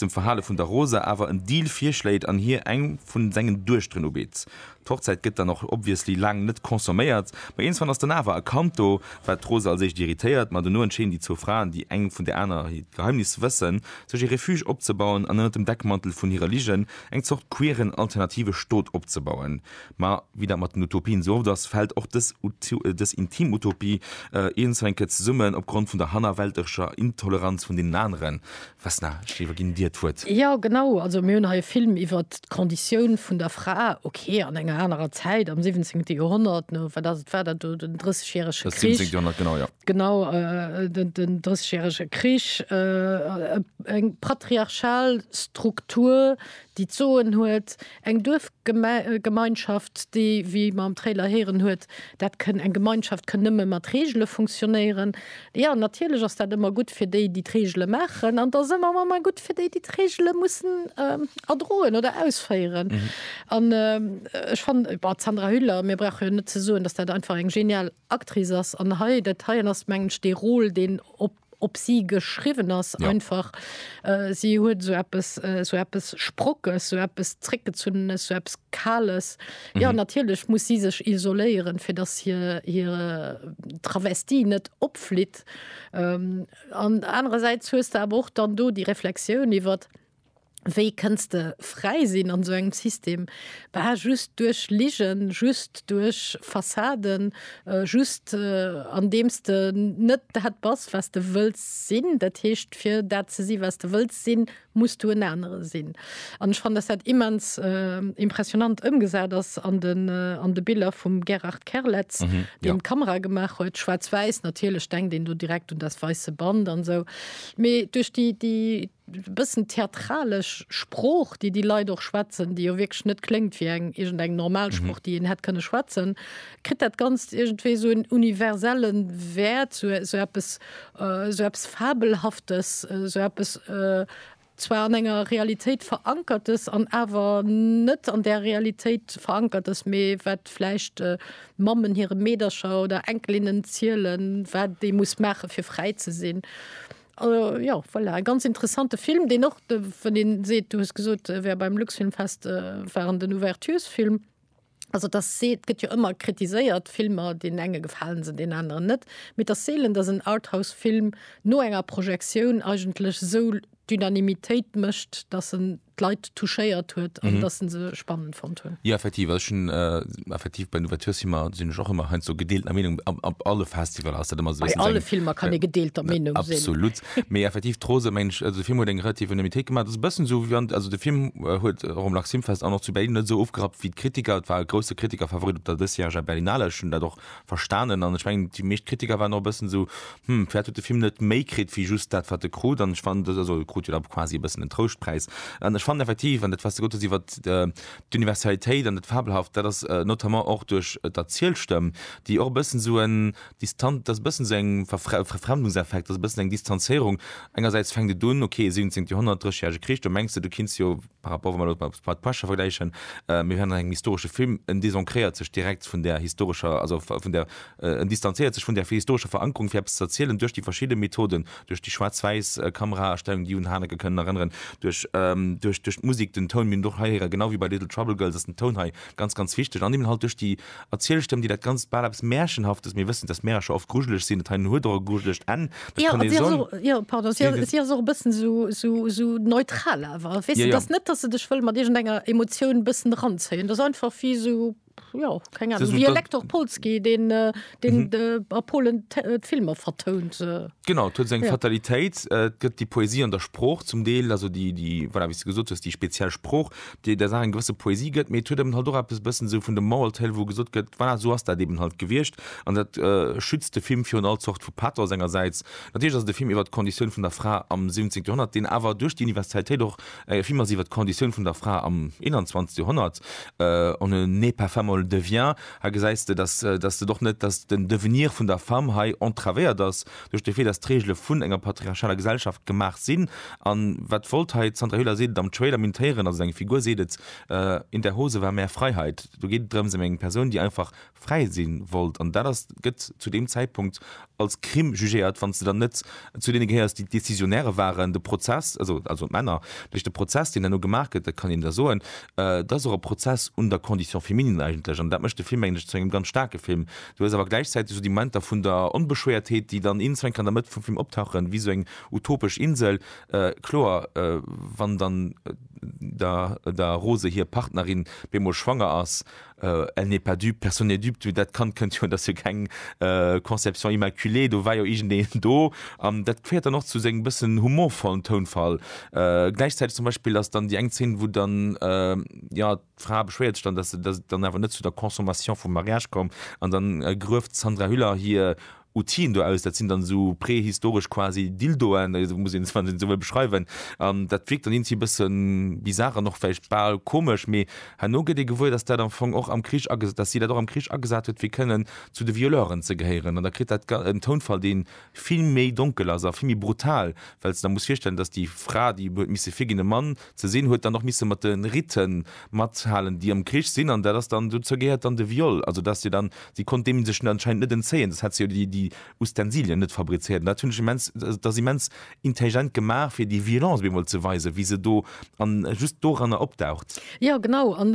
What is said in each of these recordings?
dem Verhale vun der Rosa awer en Deal virschléit an hir eng vun sengen Duechteren ubitt. D'Hochzäit gëtt dann och obviously laang net consomméiert, ma iernswann ass dann awer e Kand do, wat d'Rosa als éischt irritéiert. Ma dono entscheeden déi zwou Fraen, déi eng vun der anerer hiert Geheimnis wëssen, sech e Refuge opzebauen an ënnert dem Deckmantel vun hirer Ligen eng Zort queeren alternative Stot opzebauen. Ma wéi dat mat den Utopien esou oft ass, fält och dës dës intim Utopie iernswenke zesummen opgrond vun der hannerwälterescher Intoleranz vun deenen aneren. Vesna, ech iwwerginn dir d'Wuert. Jo, genau. Also mir hunn hei e Film iwwer d'Konditioun vun der Fra, okay, an enger anerer Zäit, am siwwenzéngte Joerhonnert, no wat ass et, war dat do den Drëssegjärege Krich? Dat siwwenzéngt Joerhonnert, genau, jo. Genau, den Drëssegjärege Krich, eng patriarchal Struktur, déi d'Soen huet, Eng Duerfgemeinschaft, déi, wéi mer am Trailer héieren, huet, dat kënn, eng Gemeinschaft kënn nëmme mat Reegele funktionéieren. Jo, natierlech ass dat ëmmer gutt fir déi, déi d'Reegele maachen, an et ass ëmmer manner gutt fir déi, déi d'Reegele mussen erdroen oder ausféieren. An ech fannen, bon, d'Sandra Hüller, mir brauche jo net ze soen, dass dat einfach eng genial Actrice ass. An hei, dat heien ass, mengen ech, dee Rôle, deen op. op si geschriwwen ass, einfach si huet esou eppes, esou eppes Sprockes, esou eppes Zréckgezunnenes, esou eppes Kales. Jo, natierlech muss si sech isoléieren, fir datt hir, hir Travestie net opflitt. An anerersäits hues de awer och dann do déi Reflexioun iwwert. Wéi kënns de fräi sinn an esou engem System? Bah, just duerch Ligen, just duerch Fassaden, just andeems de net dat bass, wat s de wëlls sinn. Dat heescht, fir dat ze si wat s de wëlls sinn, muss du en anere sinn. An ech fannen, datt dat immens impressionant ëmgesat ass an de Biller vum Gerard Kerletz, deen d'Kamera gemaach huet. Schwaarz-wäiss, natierlech denkt een do direkt un Das weiße Band an esou. Mee duerch déi bëssen theatralesch Sprooch, déi déi Leit och schwätzen, déi jo wierklech net kléngt wéi eng iergendeng normal Sprooch, déi een hätt kënne schwätzen, kritt dat Ganzt iergendwéi esou en universelle Wäert, esou esou eppes, esou eppes Fabelhaftes, esou eppes zwar an enger Realitéit Verankertes an awer net an där Realitéit Verankertes, mee wat vläicht Mammen hire Meedercher oder Enkelinnen zielen, wat ee muss maache fir fräi ze sinn. Jo voilà, e ganz interessante Film, deen och de wann een seet, du hues gesot, e wär beim Luxfilmfest, war en den Ouverturesfilm. Also et ass see et gëtt jo ëmmer kritiséiert, Filmer, deenen enge gefalen se, deenen aneren net, mee et ass seelen, datt en Arthouse-Film no enger Projektioun eigentlech esou d'Unanimitéit mécht, datt en d'Leit touchéiert huet an mhm. dass se spannend fand hun. Ja effektiv also schon äh, effektiv bei Novateur si immer sinn och immer hein so gedeelter Meinung ab, ab alle Festival aus dat immer so bei alle Filmer kann e gedeelter Meinung sinn. Absolut méi effektiv trose mensch also Film huet eng relativ Anonymitéit gemacht das bëssen so wie an also de Film äh, huet äh, rom Laximfest an noch zu Berlin net so ofgerat wie d'Kritiker et war grosse Kritiker Favorit op der dësjähriger Berlinale schon dat och verstanen an ech mengen déi meescht Kritiker waren och e bëssen esou, hm, vläicht huet de Film net méi kritt wéi just dat wat e krut an ech fand, also e krut jo da quasi e bëssen en Trouschtpräis an ech fannen effektiv, an dat wat s de gesot hues iwwer d'Universalitéit an dat Fabelhaft, dat ass notamment och duerch d'Erzielstëmm, déi och e bëssen esou en distan, dat ass e bëssen esou eng Verfre, Verfremdungseffekt, dat ass e bëssen eng Distanzéierung, engersäits fänkt et un, okay 17 Joerhonnert, Dréigjärege Krich, do mengs de du kinns jo, par rapport wann mer dat mat Blood Pressure vergläichen, mir hunn engem historesche Film, en désancréiert sech direkt vun där historescher, also vun där, en distanzéiert sech vun där historescher Verankerung fir eppes ze erzielen duerch déi verschidde Methoden, duerch déi schwaarz-wäiss Kamerastellung, déi un Haneke kënnen erënneren, duerch, duerch d'Musik, den Toun, mir hunn et och hei héieren, genau wéi bei Little Trouble Girls ass den Toun hei ganz, ganz wichteg, an eben halt duerch déi Erzielstëmm, déi dat Ganzt bal eppes Märchenhaftes, mir wëssen, dass Märercher oft grujeleg sinn, dat heien huet och e grujelegt Enn, dat kann ee sou. Jo, pardon, si ass och e bëssen esou neutral awer, weess de, dass net, dass se dech wëll mat iergendenger Emotioun e bëssen eranzéien, dat ass einfach wéi esou, jo, keng Anung, wéi e Lektor Polski, deen a Polen d'Filmer vertount. Genau, et huet seng Fatalitéit, et gëtt déi Poesie an der Sprooch zum Deel, also déi, voilà, wéi s de gesot hues, déi speziell Sprooch. déi der Saach eng gewësse Poesie gëtt, mee et huet eben halt och eppes e bëssen esou vun de moral tale, wou gesot gëtt, voilà, esou ass dat eben halt gewiescht an dat schützt de Film virun all Zort vu Pathos engersäits. Natierlech ass et e Film iwwert d'Konditioun vun der Fra am 17. Joerhonnert, deen awer duerch déi Universalitéit och e Film ass iwwert d'Konditioun vun der Fra am 21. Joerhonnert, On ne naît pas femme, on le devient. Hei gesäis de, dass, dass et och net, dass den Devenir vun der Femme hei entravéiert ass, duerch de Fait, dass d'Regele vun enger patriarchaler Gesellschaft gemaach sinn. An wat wollt hei, d'Sandra Hüller seet et am Trailer, mintéieren, also eng Figur seet et, In der Hose war mehr Freiheit. Do geet et drëms, em eng Persoun, déi einfach fräi sinn wollt. An dat ass, gëtt zu deem Zäitpunkt als Crime jugéiert, wann s de dann net zu deene gehéiers, déi d'Décisionnaire waren. De Prozess, also, also d'Männer, duerch de Prozess, deen herno gemaach gëtt, dat kann een da soen, dat ass och e Prozess un der Condition féminine eigentlech. An dat mécht de Film, mengen ech, zu engem ganz staarke Film, Du hues awer gläichzäiteg esou déi Momenter vun der Onbeschwéiertheet, déi dann iergendwann an der Mëtt vum Film optauchen, wéi esou eng utopesch Insel. Kloer, wann dann der der Rose hir Partnerin bemol schwanger ass, elle n'est pas dupe, personne n'est dupe, dat Kand kënnt jo an, dat ass jo keng Conception immaculée, do war jo iergendeen do. An dat féiert dann och zu sengem bëssen humorvollen Tounfall. Gläichzäiteg zum Beispill ass dann déi eng Zeen, wou dann, jo, D'Fra beschwéiert sech dann, dass et dann awer net zu der Consommation vum Mariage koum, an dann grueft d'Sandra Hüller hir Outile do aus, dat sinn dann esou prehistoresch quasi Dildoen, esou muss een se, wann een esou wëll, beschreiwen, an dat wierkt dann iergendwéi e bësse bizar an och vläicht bal komesch, mee herno gëtt ee gewuer, dass dat am Fong och am Krich, dass si dat och am Krich agesat huet, fir kënnen zu de Violeuren ze gehéieren, an da kritt dat en Tounfall, dee vill méi donkel ass a vill méi brutal, well s de der muss virstellen, dass déi Fra, déi huet misse virginn, e Mann, Ze sinn, huet dann och misse mat de Ritte mathalen, déi am Krich sinn. An dat ass dann, dozou gehéiert dann de Viol. Also dass se dann, si konnt deem sech anscheinend net entzéien, soss hätt se jo déi, déi Ustensilien net fabrizéiert. An dat hunn ech immens, dat ass immens intelligent gemaach, fir déi Violence op eemol ze weisen, wéi se do an just doranner opdaucht. Jo, genau. An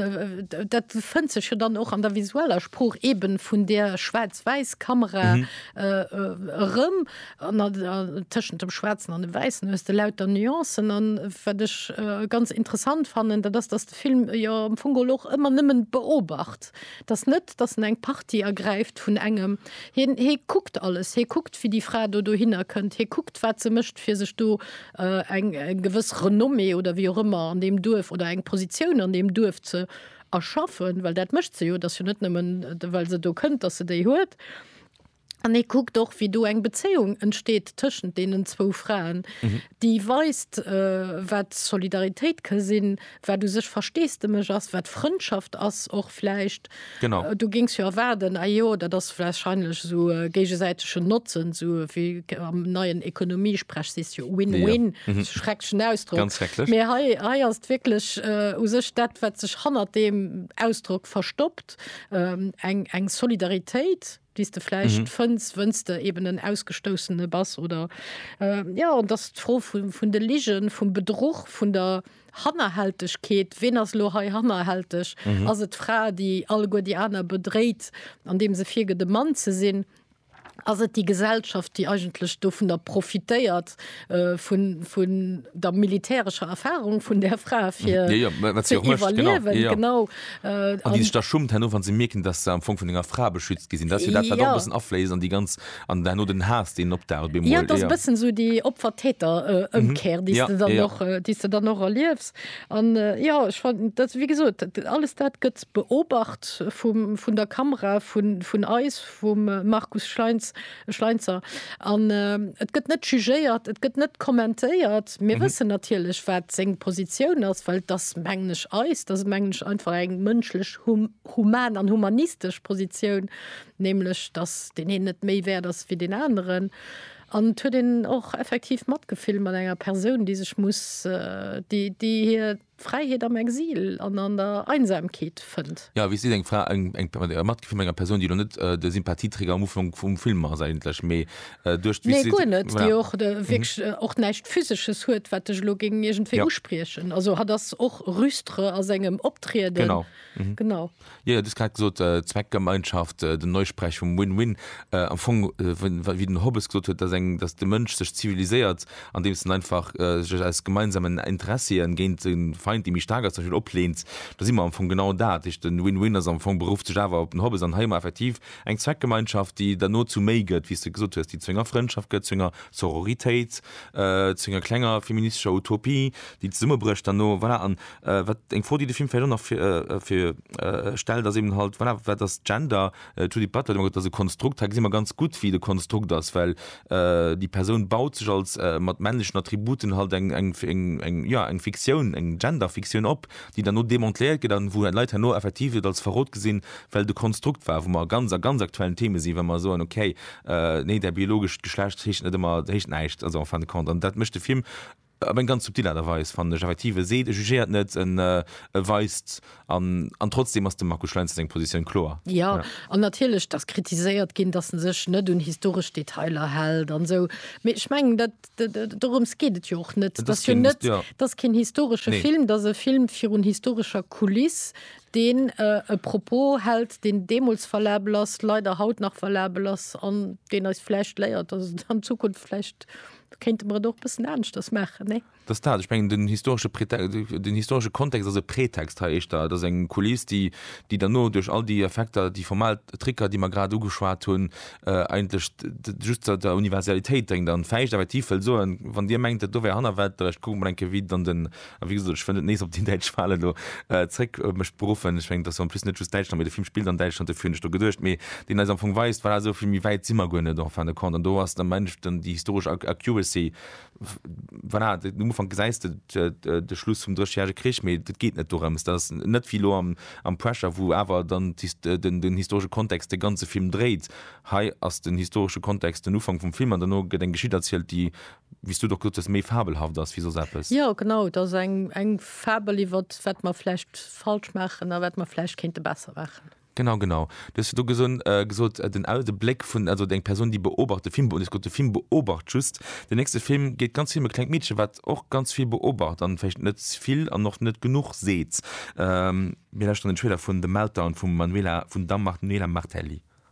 dat fënnt sech jo dann och an der visueller Sprooch eeben vun där Schwaarz-Wäiss-Kamera erëm. An tëschent dem Schwaarzen an dem Wäissen hues de lauter Nuancen. An wat ech ganz interessant fannen, dat ass, datt de Film jo am Fong geholl och ëmmer nëmmen beobacht. Et ass net, datt en eng Partie ergräift vun engem. Hien, hie kuckt alles. Hie kuckt, wéi déi Fra do dohinner kënnt. Hie kuckt, wat se mécht, fir sech do eng gewëss Renommée oder wéi och ëmmer an deem Duerf oder eng Positioun an deem Duerf ze erschaffen. Well dat mécht se jo. Et ass jo net nëmmen, well se do kënnt, datt se déi huet. An ee kuckt och, wéi do eng Bezéiung entsteet tëschent deenen zwou Fraen, déi weist, wat Solidaritéit ka sinn, wat u sech Versteesdemech ass, wat Frëndschaft ass och vläicht. Du géings jo erwaarden, ah jo, dat ass wahrscheinlech esou géigesäitegen Notzen, esou wéi am neien Ekonomiesprech sees jo win-win, schrecklechen Ausdrock, mee hei ass et wierklech u sech dat, wat sech hannert deem Ausdrock verstoppt, eng Solidaritéit. déi s de vläicht fënns, wënn s de eben en Ausgestoussene bass, oder jo, an dass d'Fro vun de Ligen, vum Bedruch, vun der Hannerhältegkeet, ween ass elo hei hannerhälteg, ass et d'Fra, déi alleguer déi aner bedréit, andeem se virgëtt e Mann ze sinn, ass et déi Gesellschaft, déi eigentlech dovunner profitéiert, vun der militärescher Erfahrung vun där Fra fir genau da schummt hanno wann se mierken, datt se am Fong vun enger Fra beschützt gi sinn, datt jo dat wat och bëssen afléisst an déi ganz an herno den Haass deen opdaucht bemol. Jo et ass e bëssen esou déi Opfer-Täter Ëmkehr déi s de dann och déi s de dann och erliefs an jo ech fanden dat wéi gesot alles dat gëtt beobacht vum vun der Kamera vun vun eis vum Markus Schlainz. E Schleinzer. An et gëtt net jugéiert, et gëtt net kommentéiert. Mir wëssen natierlech, wat seng Positioun ass, well et ass, mengen ech, eis, et ass, mengen ech, einfach eng mënschlech, human an humanistesch Positioun, nämlech datt deen een net méi wäert ass wéi deen aneren. An et huet een och effektiv Matgefill mat enger Persoun, déi sech muss, déi, déi hir. Fräiheet am Exil an an der Einsamkeet fënnt. Jo, wéi seet eng Fra, eng Matgefill mat enger Persoun, déi elo net de Sympathieträger am Ufank vum Film ass eigentlech, mee duerch d'Wiss. Nee, guer net, déi och wierklech och näischt Physesches huet, wat dech elo géing iergendwéi uspriechen. Also hatt ass och rustre a sengem Optrieden. Genau. Jo, jo, du hues grad gesot, Zweckgemeinschaft, den Neusprech vum Win-Win. Am Fong, wéi den Hobbes gesot huet, dass eng, dass de Mënsch sech ziviliséiert, andeems en einfach sech aus gemeinsamen Interessien géint e Feind, dee méi staark ass, zum Beispill opleent, da si mer am Fong genau dat. Dat heescht, den Win-Win ass am Fong, beruff sech awer op den Hobbes an hei hu mer effektiv eng Zweckgemeinschaft, déi dann no zu méi gëtt, wéi s de gesot hues, déi zu enger Frëndschaft gëtt, zu enger Sororitéit, zu enger klenger feministescher Utopie, déi zesummebrécht dann no. Voilà, an Wat eng Fro déi de Film vläicht och nach fir fir stellt ass eben halt voilà wat ass Gender? D'Judith Butler huet ëmmer gesot dat ass e Konstrukt. Hei gesi mer ganz gutt wéi et e Konstrukt ass, well déi Persoun baut sech als mat männlechen Attributen halt eng eng eng eng jo eng Fiktioun, eng Genderfiktioun op, déi dann elo demontléiert gëtt an wou d'Leit herno effektiv et als Verrot gesinn, well et e Konstrukt war. Wou mer ganz a ganz aktuellen Theme sinn, wa mer soen okay nee däi biologescht Geschlecht heescht net ëmmer heescht näischt also en fin de compte. An dat mécht de Film Op eng ganz subtil Aart a Weis, fannen ech effektiv. E seet, e jugéiert net, en weist an. An trotzdeem ass dem Markus Schlainz seng Positioun kloer. Jo, an natierlech, et ass kritiséiert ginn, datt e sech net un historesch Detailer hält an esou. Mee ech mengen, dat, dorëms geet et jo och net. Et ass jo net, et ass keen historesche Film. Et ass e Film virun historescher Kuliss, deen e Propos hält, deen deemools valabel ass, leider haut nach valabel ass an deen eis vläicht léiert, datt et an Zukunft vläicht kéinte mer et och bëssen aneschters maachen, nee? Et ass dat, ech mengen, den historesche Pretext, den historesche Kontext ass e Pretext hei éischter. Et ass eng Kuliss, déi, déi derno duerch all déi Effekter, déi formal Tricker, déi mer grad ugeschwat hunn, eigentlech just der, der Universalitéit dréngt an d'Fäischt effektiv wëll soen, Wann Dir mengt, do wär Hannerwelt, da kucke mer mol eng Kéier, wéi dann den A wéi gesot, ech wëll net nees op déi däitsch Walen do zréck mech beruffen. Ech mengen, et ass jo en plus net just Däitschland, mee de Film spillt an Däitschland, dofir hunn ech do geduecht, mee deen eis am Fong weist, voilà, esou vill méi wäit si mer guer net, en fin de compte. An do ass dann am Enn dann déi historesch Accuracy, voilà, um Ufank gesäis de de Schluss vum Dréchjärege Krich, mee et geet net dorëms. Dat ass net wéi elo am am Pressure, wou awer dann den den historesche Kontext de ganze Film dréit. Hei ass den historesche Kontext den Ufank vum Film an dono gëtt eng Geschicht erzielt, déi wéi s du et och gesot hues, méi fabelhaft ass wéi soss eppes. Jo, genau. Et ass eng Fabel iwwer wat mer vläicht falsch maachen a wat mer vläicht kéinte besser maachen. Genau, genau. Du hues virdru gesot, de Bléck vun, also eng Persoun, déi beobacht, de Film beobacht. Du hues gesot, de Film beobacht just. Den nächste Film geet ganz vill ëm e klengt Meedche wat och ganz vill beobacht an vläicht net vill an och net genuch seet. Mir lauschteren den Trailer vun The Meltdown vum Manuela, vun der Manuela Martelli.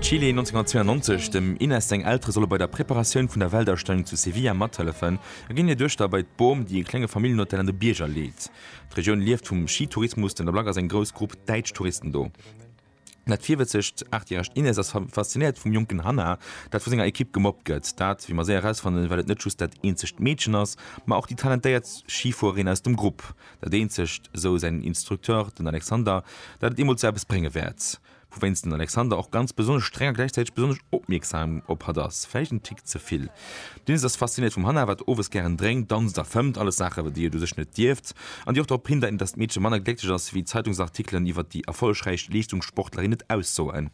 Chile 1992, Dem Inés seng Eltere solle bei der Preparatioun vun der Weltausstellung zu Sevilla mathëllefen a ginn hir Duechter bei d'Bom, déi e klenge Familljenhotel an de Bierger leet. D'Regioun lieft vum Schitourismus, den der Blag ass eng grouss Grupp däitsch Touristen do. Dat virwëtzegt achtjäregt Inés ass faszinéiert vum jonken Hannah, dat vu senger Ekipp gemobbt gëtt. Dat, wéi mer séier erausfannen, well et net just dat eenzegt Meedchen ass, ma och déi talentéiert Schifuererin aus dem Grupp. Dat eenzegt, esou säin Instructeur, den Alexander, dat et eemol zu eppes brénge wäert, wouwéinst den Alexander och ganz besonnesch streng a gläichzäiteg besonnesch opmierksam op hatt ass, vläicht en Tick ze vill. D'Inès ass fasziniert vum Hannah, wat owes gären drénkt, danzt a fëmmt, alles Saachen, déi et u sech net dierft an déi och drop hindeit, datt d'Meedche manner glécklech ass, wéi d'Zeitungsartikelen iwwer déi erfollegräich Leeschtungssportlerin et aussoen.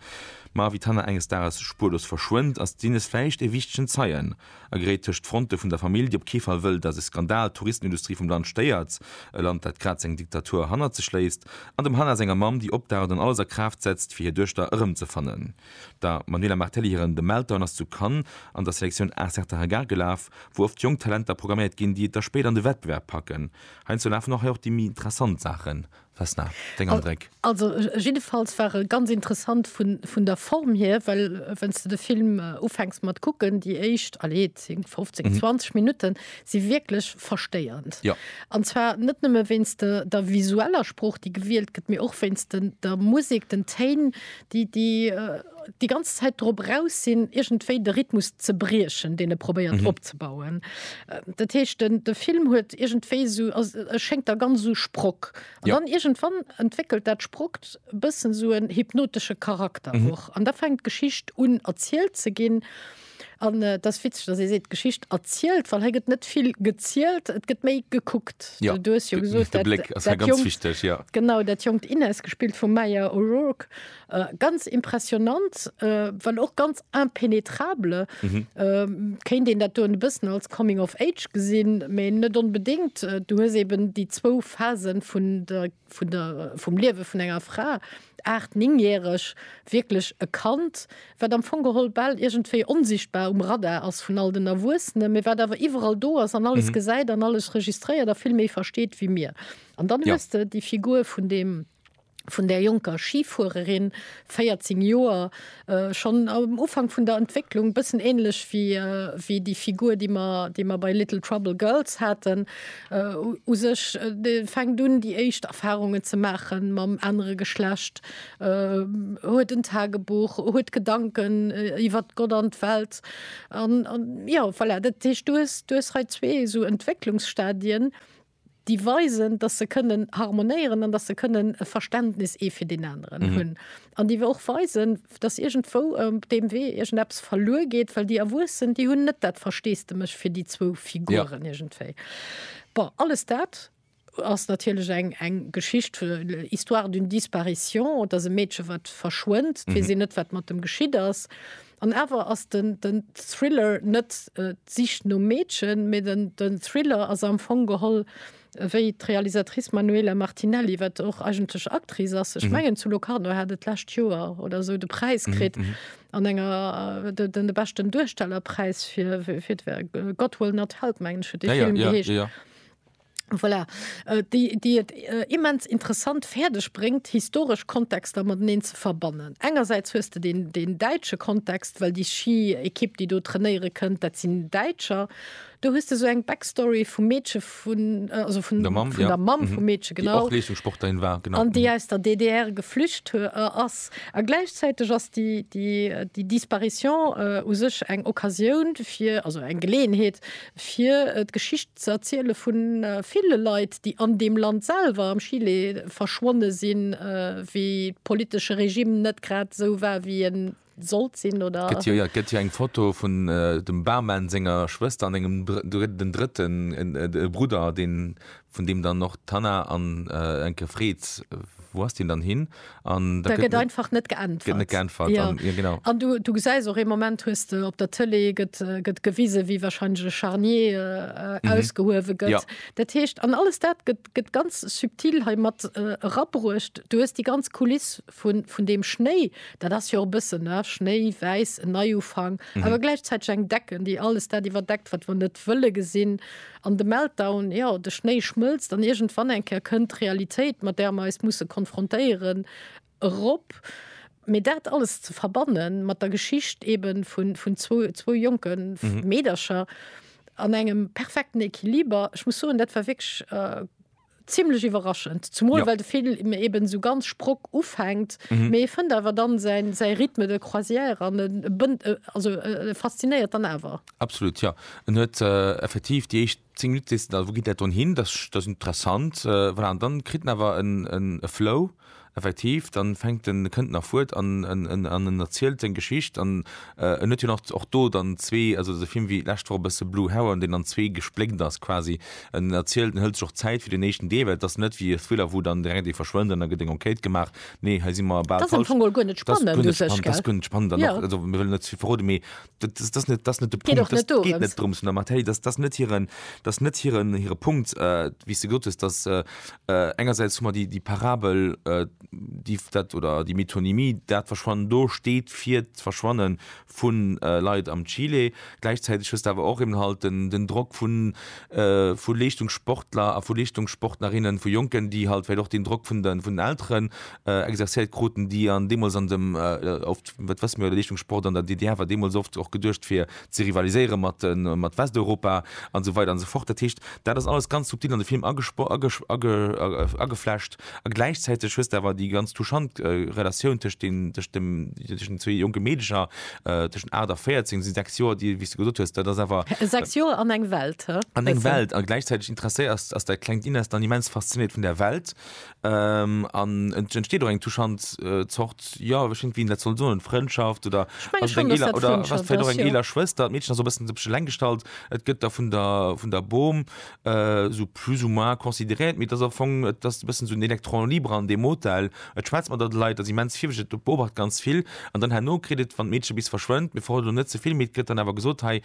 Ma wéi d'Hannah enges Dages spuerlos verschwënnt, ass d'Inès vläicht e wichtegen Zeien. a geréit tëscht d'Fronte vun der Famill, déi op kee Fall wëll, datt e Skandal d'Touristenindustrie vum Land stéiert, e Land, dat grad seng Diktatur hannert sech léisst, an dem Hannah senger Mamm, déi opdaucht an alles a Kraaft setzt, fir hir Duechter erëmzefannen. Der Manuela Martelli hiren The Meltdown ass zu Cannes an der Selektioun Un certain regard gelaf, wou oft jonk Talenter programméiert ginn, déi et da spéider an de Wettbewerb packen. Heiansdo lafen och hei och déi méi interessant Saachen Vesna, deng Andréck? Also jiddefalls war e ganz interessant vun, vun der Form hier, well wann s de de Film ufänks mat kucken, déi éischt, allez, 10, 15, 20 Minutten si wierklech verstéiernd. Jo. An zwar net nëmme wéinst de, der visueller Sprooch, déi gewielt gëtt, mee och wéinst den, der Musek, den Téin, déi déi ganz Zäit drop raus sinn, iergendwéi de Rhythmus ze briechen, deen e probéiert opzebauen. Dat heescht, den de Film huet iergendwéi esou, ass e schéngt da ganz esou Sprock. An dann iergendwann entwéckelt dat Sprockt e bëssen esou en hypnotesche Charakter och. An da fänkt d'Geschicht un erzielt ze ginn. An et ass witzeg, datt ee seet, d'Geschicht erzielt, well hei gëtt net vill gezielt, et gëtt méi gekuckt. Jo, Du hues jo gesot, de Bléck ass hei dat ganz jonkt, wichteg, jo. genau, dat jonkt Inès, gespillt vum Maya O'Rourke, ganz impressionnant, well och ganz impénétrable, kéint een dat do e bëssen als Coming of Age gesinn, mee net onbedéngt. Du hues eben déi zwou Phasen vun der. vum Liewe vun enger Fra, aacht-, néngjäreg, wierklech e Kand, wat am Fong geholl bal iergendwéi onsichtbar um Radar ass vun all den Erwuessenen, mee wat awer iwwerall do ass an alles gesäit an alles registréiert a vill méi versteet wéi mir. An dann hues de déi Figur vun deem, vun där jonker Schifuererin, 14 Joer schonn am Ufank vun der Entwécklung, bëssen ähnlech wéi déi Figur, déi mer, déi mer bei Little Trouble Girls haten. U sech fänkt un, déi éischt Erfarungen ze maache mam anere Geschlecht, huet en Tagebuch, huet Gedanken iwwert Gott an d'Welt. An, an, jo, voilà, dat heescht, du hues, du hues hei zwee esou Entwécklungsstadien. déi weisen, dass se kënnen harmonéieren an dass se kënnen e Verständnis ee fir deen aneren hunn an déi och weisen, dass iergendwou op deem Wee iergendeppes verluer geet, well déi Erwuessen, déi hunn net dat Versteesdemech fir déi zwou Figuren iergendwéi. Bon, alles dat ass natierlech eng, eng Geschicht, Histoire d'une disparition, et ass e Meedche wat verschwënnt, et weess een net, wat mat em geschitt ass. An awer ass den Thriller net d'Sich nom Meedchen, mee den Thriller ass am Fong geholl, wéi d'Realisatrice Manuela Martinelli, wat och eigentlech Actrice ass, ech mengen zu Locarno hat et d'lescht Joer oder sou de Präis kritt an enger, de beschten Duerstellerpräis fir God Will Not Help mengen ech huet dee Film geheescht. Voilà, déi et immens interessant fäerdeg bréngt, historesch Kontexter mateneen ze verbannen. Engersäits hues de deen däitsche Kontext, well déi Schi-Ekipp, déi do trainéiere kënnt, dat sinn Däitscher. Do hues de esou eng Backstory vum Meedche vun, also vun der Mamm, vun der Mamm vum Meedche, genau. Déi och Leeschtungssportlerin war, genau. An déi aus der DDR geflücht ass. A gläichzäiteg ass déi Disparition u sech eng Occasioun fir, also eng Geleeënheet, fir d'Geschicht ze erziele vu ville Leit, déi an deem Land selwer, am Chile, verschwonne sinn, wéi de politesche Regime net grad esou war, wéi e sollt sinn, oder. Gëtt jo, jo, et gëtt jo eng Foto vun dem Barman senger Schwëster an engem, den drëtten, e Brudder, dee vun deem dann och d'Hanna an Elke freet, wou ass deen dann hin? An da gëtt. Da gëtt einfach net geäntwert. Gëtt net geäntwert. Ja. An, ja genau. An du, du gesäis och ee Moment, hues de op der Tëlee, gëtt, gëtt gewise wéi warscheinlech e Charnier mhm. ausgehuewe gëtt. Ja. Dat heescht, an alles dat gëtt, gëtt ganz subtil hei mat äh, rabruecht. Du hues déi ganz Kuliss vun, vun dem Schnéi, dat ass jo e bëssen ne? Schnéi, wäiss, en Neiufang, mhm. awer gläichzäiteg eng Decken, déi alles dat iwwerdeckt, wat wann net wëlle gesinn. Äh, An de Meltdown, jo, de Schnéi schmëlzt an iergendwann eng Kéier kënnt d'Realitéit, mat där mer eis musse konfrontéieren, erop. Mee dat alles ze verbanne mat der Geschicht eebe vun zwou jonke Meedercher an engem perfekten Equiliber, ech muss soen, dat war wierklech. Zimlech iwwerraschend, zumol well de Film eben esou ganz Sprock ufänkt, mee e fënnt awer dann säin säi Rythme de croisière an e bënnt also e faszinéiert dann awer. Absolut jo, en huet effektiv déi éischt 10 Minutte sees de dann wou geet dat dann hin, dat ass interessant voilà an dann kritt en awer e Flow. Effektiv, dann fänkt en, kënnt en a fuert an en erzielt seng Geschicht an en huet jo nach och do dann zwee, also esou Film wéi lescht Woch e bësse Blue Heron, deen an zwee gespléckt ass quasi. En erzielt, en hëlt sech och Zäit fir den éischten Deel, well et ass net wéi e Thriller wou dann direkt ee verschwënnt an da gëtt eng Enquête gemaach. Nee, hei si mer bal falsch. Dat ass am Fong guer net spannend u sech, gell? Dat ass guer net spannend an och, also mir wëllen net ze vill verroden, mee das, das net das net de Punkt das net geht net drums der Mattei das das net hierieren das net hierieren ihre Punkt äh, wie du Gottes das äh, äh, engerseits mal die die Parabel äh, die dat oder die Metonymie dat verschwannen do steht vier verschwannen von äh, Lei am Chile gleichzeitig ist aber auch im halt den, den Druck von äh, von Lichtungssportler von Lichtungssportlerinnen von Jonken die halt vielleicht auch den Druck von den von den Eltern exercéiert kruten, déi an deemools an dem oft, dat wësse mir, de Leeschtungssport an der DDR war deemools oft och geduecht fir ze rivaliséiere mat Westeuropa an esou weider an esou fort. Dat heescht, dat ass alles ganz subtil an de Film ageflecht a gläichzäiteg hues de awer déi ganz touchant Relatioun tëscht deem, tëscht dem, tëscht den zwee jonke Meedecher tëschent 8 a 14, sinn 6 Joer, déi, wéi s de gesot hues, dat ass awer. 6 Joer an eng Welt, he? An eng Welt a gläichzäiteg interesséiert ass, ass dat klengt Inès dann immens fasziniert vun där Welt An et entsteet och eng touchant Zort, jo, ech wéisst net, wéi een dat soll soen, Frëndschaft oder ass et eng eeler, oder ass et vläicht och eng eeler Schwëster? D'Meedchen ass och e bëssen sech eleng gestallt. Et gëtt da vun der, vun der Bom esou plus ou moins consideréiert, mee et ass am Fong, et ass e bëssen esou en électron libre an deem Hotel. Et schwätzt mat der, et leit, ass immens virwëtzeg, et beobacht ganz vill. An dann herno kritt et, wann d'Meedche bis verschwënnt, mir verroden elo net ze vill, mee et gëtt dann awer gesot, hei,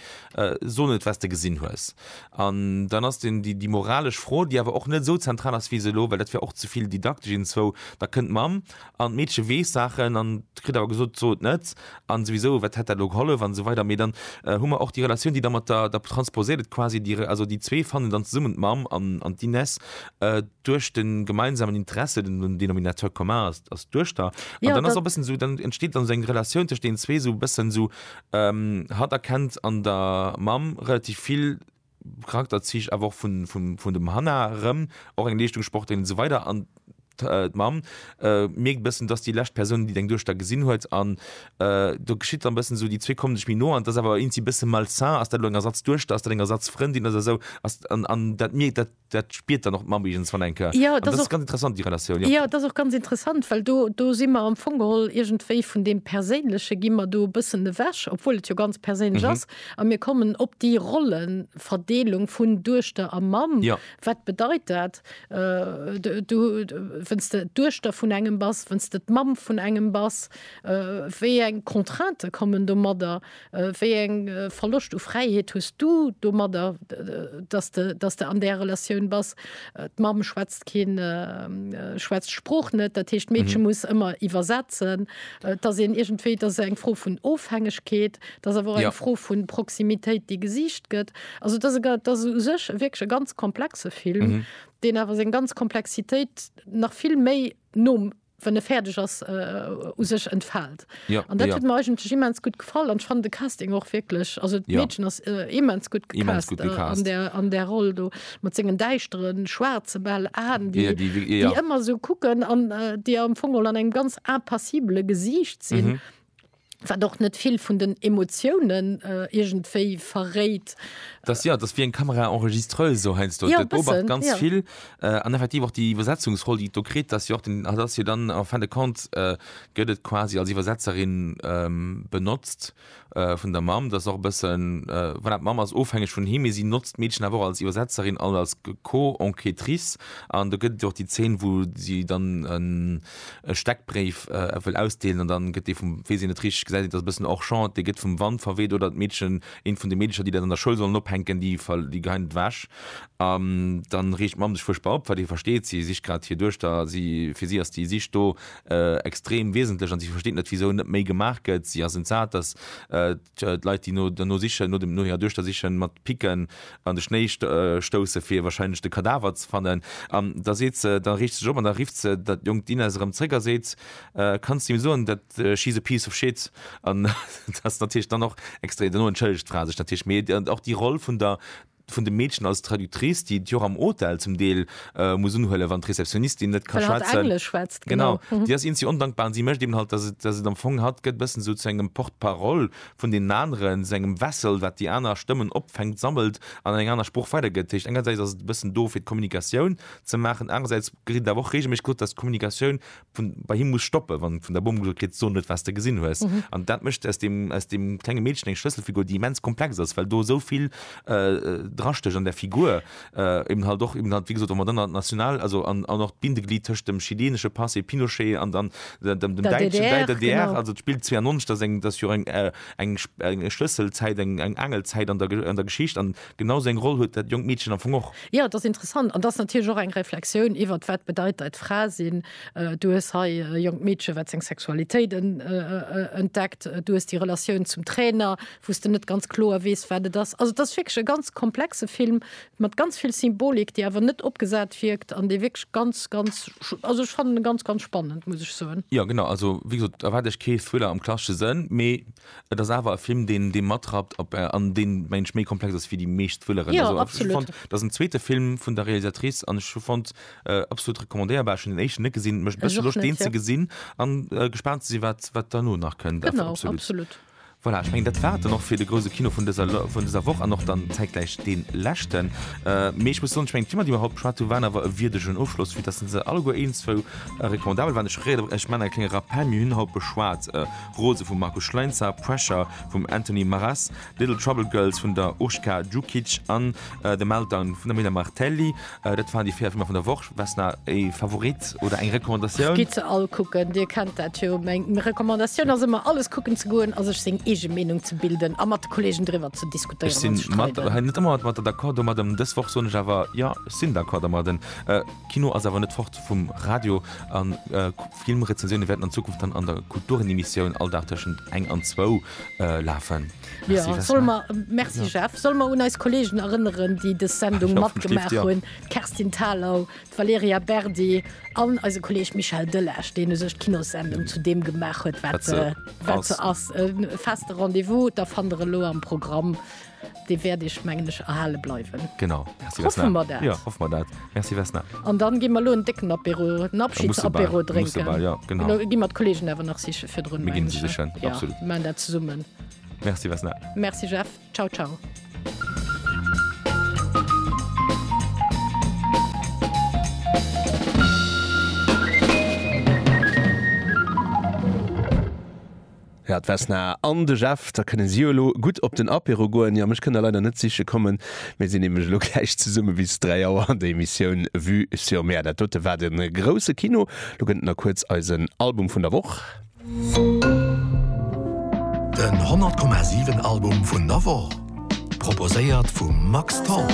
so net, wat s de gesinn hues. An dann ass den, déi, déi moralesch Fro, déi awer och net esou zentral ass wéi se elo, well dat wär och ze vill didaktesch, Innen zwou, da kënnt d'Mamm an d'Meedche weess Saachen an kritt awer gesot, So et net an souwisou, wat hätt dat elo gehollef an esou weider. Mee dann hu mer och déi Relatioun, déi da mat der, da transposéiert et quasi déi, also déi zwee fannen dann zesummen, d'Mamm an, an d'Ines, duerch de gemeinsamen Interesse, den, den Dénominateur commun ass, ass d'Duechter. An dann ass och e bëssen esou, dann entsteet dann esou eng Relatioun tëscht deenen zwee, esou e bëssen esou Hatt erkennt an der Mamm relativ vill Charakterzich awer och vun dem Hanna erëm, och eng Leeschtungssportlerin an esou weider an d'Mamm mierkt e bëssen, et ass déi lescht Persoun, déi deng Duechter gesinn huet an do geschitt dann e bëssen esou, déi zwee komme sech méi no an et ass awer iergendwéi e bësse malsain, ass dat elo eng Ersatzduechter, ass dat eng Ersatzfrëndin oder esou an dat mierkt, dat dat spiert dann och d'Mamm iergens wann enke. Jo, dat ass ganz interessant déi Relatioun. Jo, dat ass och ganz interessant, well do do si mer am Fong geholl iergendwéi vun deem Perséinleche gi mer do e bëssen ewech, obwuel et jo ganz perséinlech ass, a mir kommen op déi Rollenverdeelung vun Duechter a Mamm. Wat bedeit dat, du wenn's de d'Duechter vun engem bass, wenn's de d'Mamm vun engem bass, wéi eng Contraintë kommen domadder, Wéi eng Verloscht u Fräiheet hues du domadder, dass de, dass de an där Relatioun bass? D'Mamm schwätzt keen, schwätzt d'Sprooch net, dat heescht d'Meedche muss ëmmer iwwersetzen. Et ass een iergendwéi, et ass eng Fro vun Ofhängegkeet, et ass awer och eng Fro vu Proximitéit, déi gesicht gëtt. Also et ass e, et ass u sech wierklech e ganz komplexe Film, deen awer seng ganz Komplexitéit nach vill méi nom. wann e fäerdeg ass, u sech entfaalt. An dat huet mer eigentlech immens gutt gefall an ech fannen de Casting och wierklech, also d'Meedchen ass immens gutt gecast an där Roll do mat sengen däischtere schwaarze bal Aen, déi ëmmer esou kucken an déi am Fong emol an engem ganz impassibele Gesiicht sinn. Wat och net vill vun den Emotiounen iergendwéi verréit. Dass, jo, dass wéi eng Caméra enregistreuse sou heiansdo. Jo, e bëssen, jo. Dat beobacht ganz vill. An effektiv och déi Iwwersetzungsroll, déi et do kritt, dass jo och den, dass jo dann en fin de compte gëtt et quasi als Iwwersetzerin benotzt vun der Mamm. Dass och e bëssen, voilà, d'Mamm ass ofhängeg vun him, mee si notzt d'Meedchen awer och als Iwwersetzerin an als Co-enquêtrice. An do gëtt et jo och déi Zeen, wou si dann en. e Steckbréif wëll ausdeelen an dann gëtt dee vum, weess een net richteg, gesäit een, et ass e bëssen hors champ, dee gëtt vum Wand verweet oder d'Meedchen, eent vun de Meedercher, déi dat an der Schoul sollen ophänken, déi geheien et ewech an dann reegt d'Mamm sech fuerchtbar op, well déi versteet, si sicht grad hir Duechter, si, fir si ass déi Sich do extrem wiesentlech an si versteet net, wisou net méi gemaach gëtt, si ass entsat, dass. Leit déi no derno sichen, no hirer Duechter sichen, mat Picken an de Schnéi stousse fir warscheinlech de Kadaver ze fannen. An da seet se, da riicht se sech op an da rifft se dat jonkt Inès erëm zréck a seet, Kanns de him soen, dat she's a piece of shit. An dat ass natierlech dann och extrem, dono entschëllegt d'Fra sech natierlech, mee och déi Roll vun der vun de Meedchen als Traductrice, déi et jo och am Hotel zum Deel muss unhuelen, wann d'Receptionistin net ka schwätzen. Genau, déi ass iinzi ondankbar an si mécht eben halt, dass et, dass et am Fong hatt gëtt e bëssen esou zu engem Porte-parole vun deenen aneren, zu engem Vessel, wat déi aner Stëmmen opfänkt, sammelt an an eng aner Sprooch weidergëtt. Dat heescht, engersäits ass et e bëssen do fir d'Kommunikatioun ze maachen, anerersäits gëtt et awer och reegelméisseg gesot, dass d'Kommunikatioun vun bei him muss stoppen wann vun der Bomm gesot kritt so net was de gesinn hues an mm -hmm. dat mecht aus dem aus dem klenge Mädchen eng Schlësselfigur déi immens komplex ass well do souvill äh, äh drastech an der Figur äh, eben halt doch eben halt wie gesot man dann national also an, an noch Bindeglied tëscht dem chilenesche Passé Pinochet an dann dem, dem der Deitschen DDR, der DDR genau. also spielt 92 dat eng dat jo eng äh, eng Schlësselzäit eng eng Angelzäit an der an der Geschicht an Genau seng Roll huet dat jonkt Meedchen am Fong och. Jo, et ass interessant an et ass natierlech och eng Reflexioun iwwert, wat bedeit deit Fra sinn. Du hues hei e jonkt Meedche wat seng Sexualitéit entdeckt, du hues déi Relatioun zum Trainer, wou s de net ganz kloer weess, wat et ass. Also et ass wierklech e ganz komplexe Film mat ganz vill Symbolik, déi awer net opgesat wierkt an dee wierklech ganz, ganz, also ech fannen e ganz, ganz spannend, muss ech soen. Jo, genau. Also wéi gesot, erwaart Iech kee Thriller am klassesche Sënn, mee Et ass awer e Film deen dee matrappt op an deen mengen ech méi komplex ass wéi déi meescht Thrilleren. Jo, Also ech hu absolut. fonnt et ass en zweete Film vun der Realisatrice an ech hu fonnt absolut recommandéierbar. Ech hunn den éischten net gesinn, mécht e Ech bësse och Loscht net, deen ze jo. gesinn an gespaant ze sinn wat wat derno nach kënnt. Awer Genau, absolut. absolut. Voilà, ech mengen dat war et dann och fir de grouse Kino vun dëser Lo vun dëser Woch an och dann zäitgläich dee leschten. Mee ech muss soen, ech mengen d'Filmer déi mer haut beschwat hunn waren awer e wierdegen Ofschloss vue dass se alleguer eenzwou recommandabel waren. Ech reeë ech maachen e klenge Rappel, mir hunn haut beschwat, Rose vum Markus Schleinzer, Pressure vum Anthony Maras, Little Trouble Girls vun der Urška Djukić an The Meltdown vun der Mila Martelli. Dat waren déi 4 Filmer vun der Woch. Vesna, e Favorit oder eng Recommandatioun? Gitt se all kucken, Dir kennt dat jo. Meng Recommandatioun ass ëmmer, alles kucken ze goen a sech seng eege Meenung ze bilden a mat de Kolleegen driwwer ze diskutéieren an ze streiden. Ech sinn mat, hei, net ëmmer mat der d'accord domadden. Dës Woch soen ech awer, jo, ech sinn d'accord domadden. Kino ass awer net fort vum Radio a. Filmrezensioune wäerten an Zukunft dann an der Kulturenemissioun all Dag tëschent eng an zwou lafen. Merci Jeff. Solle mer un eis Kolleegen erënneren, déi dës Sendung matgemaach hunn, d'Kerstin Thalau, d'Valerija Berdi an eise Kolleeg Michel Delage, deen u sech d'Kinossendung zu deem gemaach huet, wat se ass. E feste Rendez-vous, da fannt der elo am Programm Dee wäert Iech, mengen ech, erhale bleiwen. Genau. Merci Vesna. Hoffe mer dat. Jo, hoffe mer dat. Merci Vesna. An dann gi mer lo en décken Apéro, en Da musse bal, Abschiedsapéro musse drénken. bal, jo, genau. Lo gi mer d'Kollegen awer nach siche virdrun, Mir ginn mengen se ech. sichen, Jo, absolut. mir maachen dat zesummen. Merci Vesna. Merci Jeff. Ciao, ciao. Ja, d'Vesna an de Jeff, da kënne si jo elo gutt op den Apéro goen. Jo, mech kënnt der leider net siche kommen, mir sinn nämlech elo gläich zesumme bis 3 Auer an der Emissioun Vue sur Mer. Dat dote war de grousse Kino. Lo gëtt et nach kuerz eisen Album vun der Woch. Den 100,7 Album vun der Woch. Proposéiert vum Max Tholl.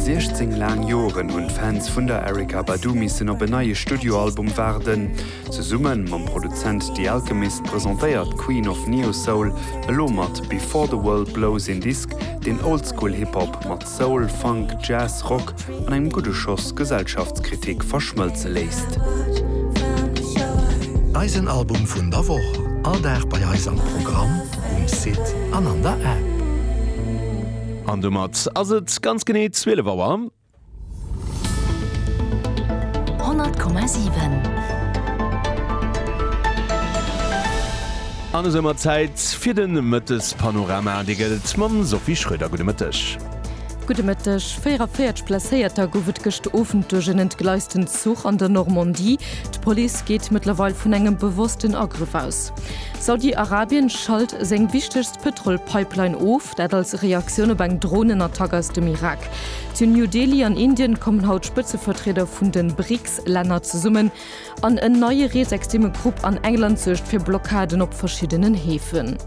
Siechzéng laang Joren hunn d'Fans vun der Erykah Badu missen op en neie Studioalbum waarden. Zesumme mam Produzent The Alchemist presentéiert d'Queen of Neo-Soul elo mat Before the World Blows een Disk, deen Oldschool-Hip-Hop mat Soul, Funk, Jazz, Rock an engem gudde Schoss Gesellschaftskritik verschmëlze léisst. Eisen Album vun der Woch, all Dag bei eis am Programm, um Site an an der App. An domat ass et ganz genee 12 Auer. 100,7. An esou mar Zäit fir de Mëttespanorama. Dee gëllt mam Sophie Schröder. Gudde Mëtteg. Gudde Mëtteg. 44 Blesséierter gouf et gëscht Owend duerch en entgleisten Zuch an der Normandie. D'Police geet mëttlerweil vun engem bewossten Agrëff aus. Saudi-Arabien schalt seng wichtegst Pëtrol-Pipeline of, dat als Reaktioun op eng Dronenattack aus dem Irak. Zu New Delhi an Indien kommen haut d'Spëtzevertrieder vun den BRICS-Länner zesummen an en neie reesextreme Grupp an England suergt fir Blockaden op verschiddenen Heefen.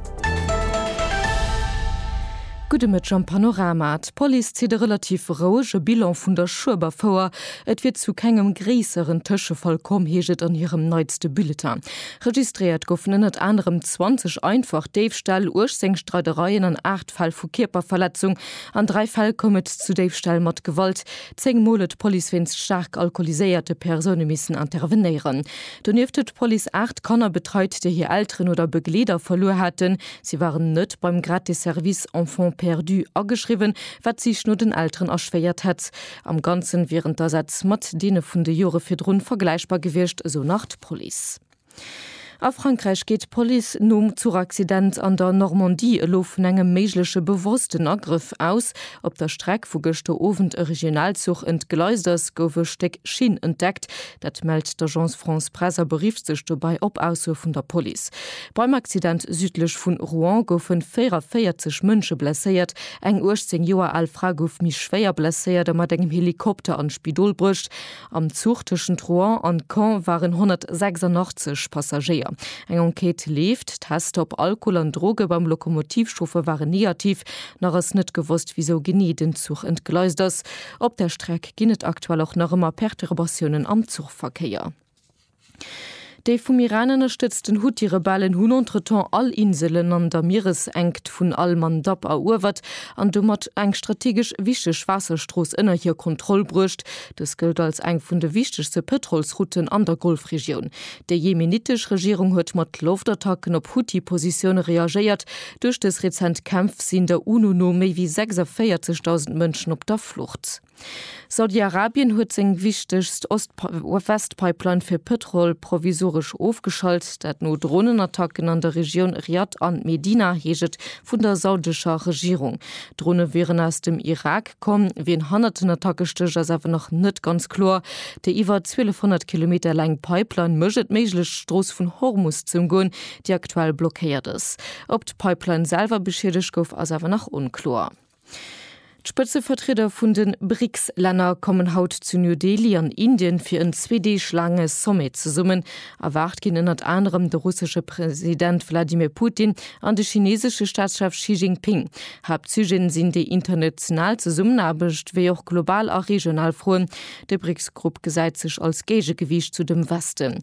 Gudde Mëtteg am Panorama. D'Police zitt e relativ rouege Bilan vun der Schueberfouer. Et wier zu kengem gréisseren Tëschefall komm, heescht et an hirem neitste Bulletin. Registréiert goufen ënnert anerem 20 einfach Déifställ, 18 Streidereien an 8 Fäll vu Kierperverletzung, An dräi Fäll koum et zu Déifställ mat Gewalt. Zéng Mol huet d'Police wéinst staark alkoholiséierte Persoune missen intervenéieren. Donieft huet d'Police aacht Kanner betreit, déi hir Elteren oder Begleeder verluer haten. Si waren net beim gratis Service Enfants perdus ageschriwwen, wat d'Sich no den Elteren erschwéiert hätt. Am Ganzen wieren d'Asätz mat deene vun de Jore virdrun vergläichbar gewiescht, esou nach d'Police. A Frankräich geet d'Police nom Zuchaccident an der Normandie elo vun engem méigleche bewossten Agrëff aus. Op der Streck, wou gëschter Owend e Regionalzuch entgleist ass, gouf e Stéck Schinn entdeckt. Dat mellt d'Agence France-Presse a berifft sech dobäi op Aussoe vun der Police. Beim Accident südlech vu Rouen goufe 44 Mënsche blesséiert. Eng 18 Joer al Fra gouf méi schwéier blesséiert a mat engem Helikopter an d'Spidol bruecht. Am Zuch tëschent Rouen an Caen waren 186 Passagéier. Eng Enquête leeft. D'Tester op Alkohol an Droge beim Lokomotivchauffer waren negativ. Nach ass net gewosst, wisou genee den Zuch entgleist ass. Op der Streck ginn et aktuell och nach ëmmer Perturbatiounen am Zuchverkéier. Déi vum Iran ënnerstëtzten Huthi-Rebellen hunn entretemps all Inselen an der Mieresenkt vun al-Mandab eruewert an domat eng strategesch wichteg Waasserstrooss ënner hir Kontroll bruecht. Dës gëllt als eng vun de wichtegste Pëtrolsrouten an der Golfregioun. Déi jemenitesch Regierung huet mat Loftattacken op Huthi-Positioune reagéiert. Duerch dës rezent Kämpf sinn der UNO no méi wéi 46.000 Mënschen op der Flucht. Saudi-Arabien huet seng wichtegst Ost-West-Pipeline fir Pëtrol provisoresch ofgeschalt, dat no Dronenattacken an der Regioun Riad an Medina, heescht et vun der saudescher Regierung. D'Drone wieren aus dem Irak komm. Wien hannert den Attacke stécht, ass awer nach net ganz kloer. Déi iwwer 1200 Kilometer laang Pipeline mécht et méiglech, d'Strooss vun Hormus ze ëmgoen, déi aktuell blockéiert ass. Ob d'Pipeline selwer beschiedegt gouf, ass awer nach onkloer. D'Spëtzevertrieder vun de BRICS-Länner kommen haut zu New Delhi an Indien fir en zwee Deeg laange Sommet zesummen. Erwaart ginn ënnert anerem de russesche President Wladimir Putin an de chineesesche Staatschef Xi Jinping. Haaptsujeten sinn déi international Zesummenaarbecht, wéi och global a regional Froen. De BRICS-Grupp gesäit sech als Géigegewiicht zu dem Westen.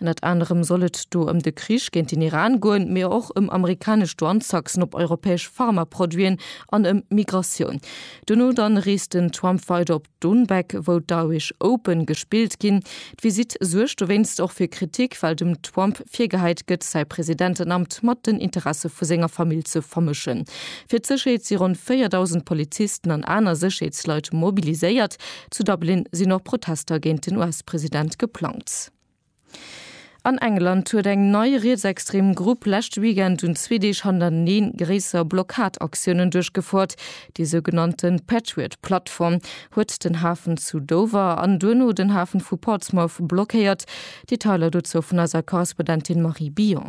Ënnert anerem soll et do ëm de Krich géint den Iran goen, mee och ëm amerikanesch Douanetaxen op europäesch Pharmaproduiten an ëm Migratioun. Duerno dann reest den Trump weider op Dohnbek, wou d'Irish Open gespillt ginn. D'Visitt suergt dowéinst och fir Kritik, well dem Trump virgehäit gëtt, säi Presidentenamt mat den Interesse vu senger Famill ze vermëschen. Fir d'Sécherheet si ronn 4.000 Polizisten an aner Sécherheetsleit mobiliséiert. Zu Dublin sinn och Protester géint den US-President geplangt. An England huet eng nei rietsextrem Grupp leschte Weekend un zwee Deeg hannerteneen gréisser Blockadaktiounen duerchgefouert. Déi sougenannte Patriot-Plattform huet den Hafen zu Dover an duerno den Hafen vu Portsmouth blockéiert. Detailer dozou vun eiser Korrespondentin Marie Billon.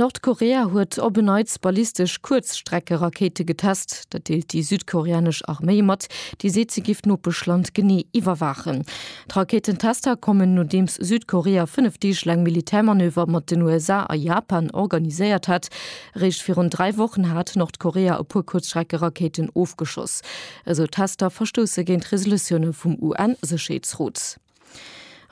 Nordkorea huet op en Neits ballistesch Kuerzstreckerakéite getest. Dat deelt déi südkoreanesch Arméi mat, déi seet, si géif d'Nopeschland genee iwwerwaachen. D'Rakéitentester kommen, nodeems Südkorea fënnef Deeg laang Militärmanöver mat den USA a Japan organiséiert hat. Eréischt virun dräi Wochen hat Nordkorea e puer Kuerzstreckerakéiten ofgeschoss. Esou Tester verstousse géint Resolutioune vum UN-Sécherheetsrot.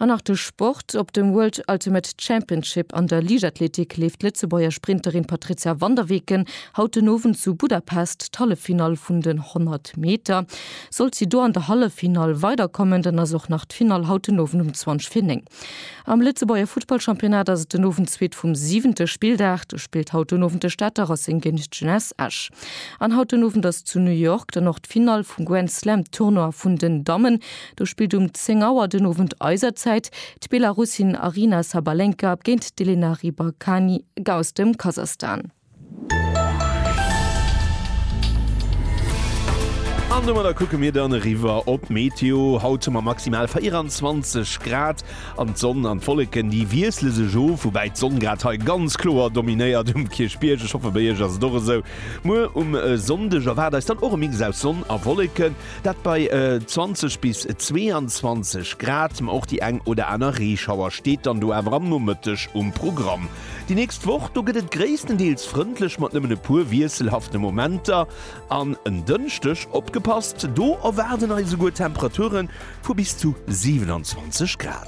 An nach de Sport, Op dem World Ultimate Championship an der Liichtathletik leeft d'Lëtzebuerger Sprinterin Patrizia van der Weken haut den Owend zu Budapest d'Halleffinall vun den 100 Meter. Sollt si do an der Halleffinall weiderkommen, dann ass och nach d'Finall haut den Owend um 20 vir 9. Am Lëtzebuerger Futtballchampionnat ass et den Owend zweet vum siwente Spilldag. Do spillt haut den Owend de Stater Racing géint d'Jeunesse Esch. An haut den Owend ass zu New York dann och d'Finall vum Grand Slam Tournoi vun den Dammen. Do spillt um 10 Auer den Owend eiser Zäit d'Belarussin Aryna Sabalenka géint d'Elena Rybakany aus dem Kasachstan. An domadder kucke mir dann eriwwer op d'Meteo. Haut hu mer maximal 24 Grad an d'Sonn an d'Wolleken, déi wiessle sech of, woubäi d'Sonn grad hei ganz kloer dominéiert um Kierchbierg. Ech hoffe bei Iech ass et och esou. Muer um Sonndeg erwaart eis dann och e Mix aus Sonn a Wolleken. Dat bei 20 bis 22 Grad, ma och déi eng oder aner Reeschauer steet dann do awer am Nomëtteg um Programm. Déi nächst Woch, do gëtt et gréisstendeels frëndlech mat nëmmen e puer wiesselhafte Momenter. An en Dënschdeg, opgepasst, do erwaarden eis esouguer Temperature vu bis zu 27 Grad.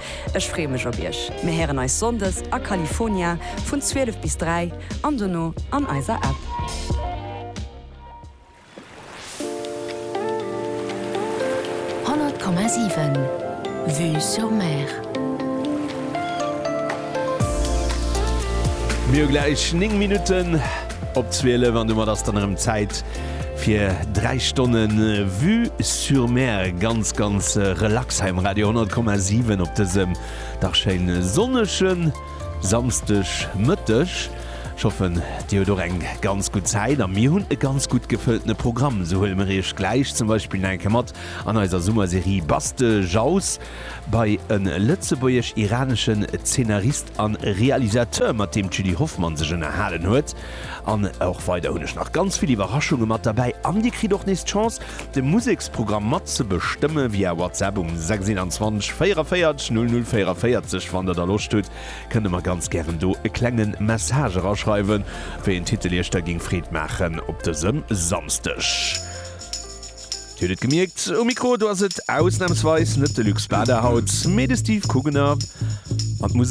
Ech freeë mech op iech. Mir héieren eis Sonndes a California vun 12 bis 3 an dono an eiser App. Honnert Komma siwen Vue sur Mer. Mir hu gläich 9 Minutten op 12 an domat ass dann erëm Zäit fir 3 Stonne Vue sur Mer ganz ganz relax heim Radio 10,7 op dësem dach schéin sonneschen Samsteg Mëtteg. Schoffen Dir huet och eng ganz gut Zäit a mir hunn e ganz gut gefëlltene Programm. Sou huele mir Iech gläich zum Beispill nach eng Kéier mat an eiser Summerserie Baste Jaus bei e lëtzebuergesch-iraneschen Zeenarist an Realisateur, mat deem d'Julie Hoffmann sech ënnerhalen huet. An och weider hunn ech nach ganz vill Iwwerraschunge mat derbäi an dir kritt och nees d'Chance, de Museksprogramm mat ze bestëmme via WhatsApp um 621 44 00 44. Wann der da Loscht hutt, kënnt der mer ganz gären do e klenge Message eraschreiwen, wéi een Titel iech da géing Freed maachen op dësem Samsdeg. Dir hutt et gemierkt, um Mikro, do ass et ausnamsweis net de Luc Spada haut, mee de Steve Kugener an d'Musek.